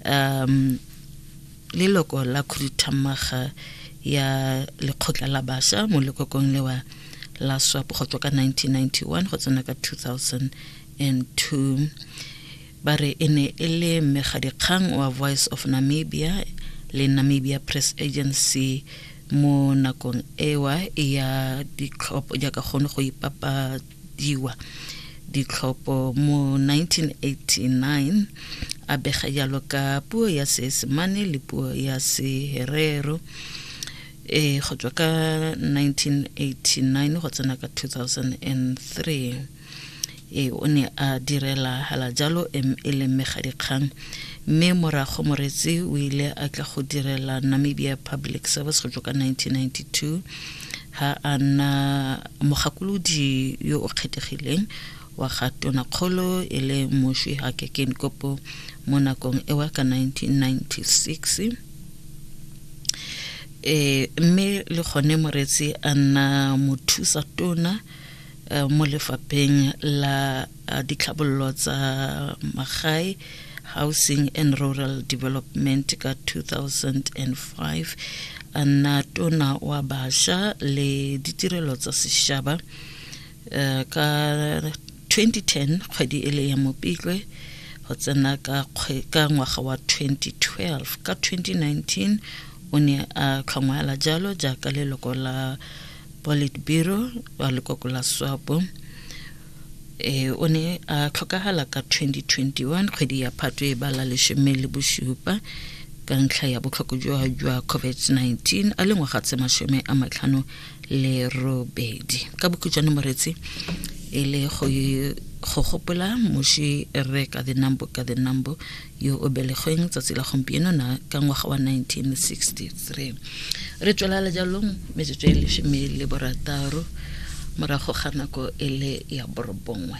um leloko la khuduthamaga ya lekgotla la basha mo lekokong lewa la swap go tswa ka 1991 go tsena ka 2002 ba re e ne e le mmegadikgang wa voice of namibia le namibia press agency mo nakong ewa ya ditlhopho jaaka kgone go ipapa diwa ditlhopho mo 1989 a bega jalo ka puo ya seesemane le puo ya seherero e go tswa ka 1989 go tsena ka 2003 e o ne a direla hala jalo e leng megadikgang mme morago moretsi o ile a tla go direla namibia public service go tswa ka 1992 ha a nna mogakolodi yo o kgethegileng wa ga Tonakgolo e le Moswi Hage Geingob mo nakong ewa ka 1996. E, mme le gone Moretsi a nna mothusa tona mo lefapheng la a ditlhabololo tsa magae housing and rural development ka 2005 a nna tona wa basha le ditirelo tsa sešaba eh, ka 2010 kgwedi e le ya mopitlwe go tsena ka kgwe- ka ngwaga wa 2012 ka 2019 o ne a tlhongwala jalo jaaka leloko la politburo wa lekoko la swapo e o ne a tlhokagala ka 2021 kgwedi ya phatwe e bala leshome le bosupa ka ntlha ya botlhoko jwa jwa covid-19 a le ngwaga tse mashome a matlhano le robedi ka bokhutšwane moretsi e le go gopola moši re ka the number ka the number yo o belegweng tsatsi la gompieno na ka ngwaga wa 1963 re tswela le jalong metsotso e lesome le borataro morago ga nako e le ya borobongwe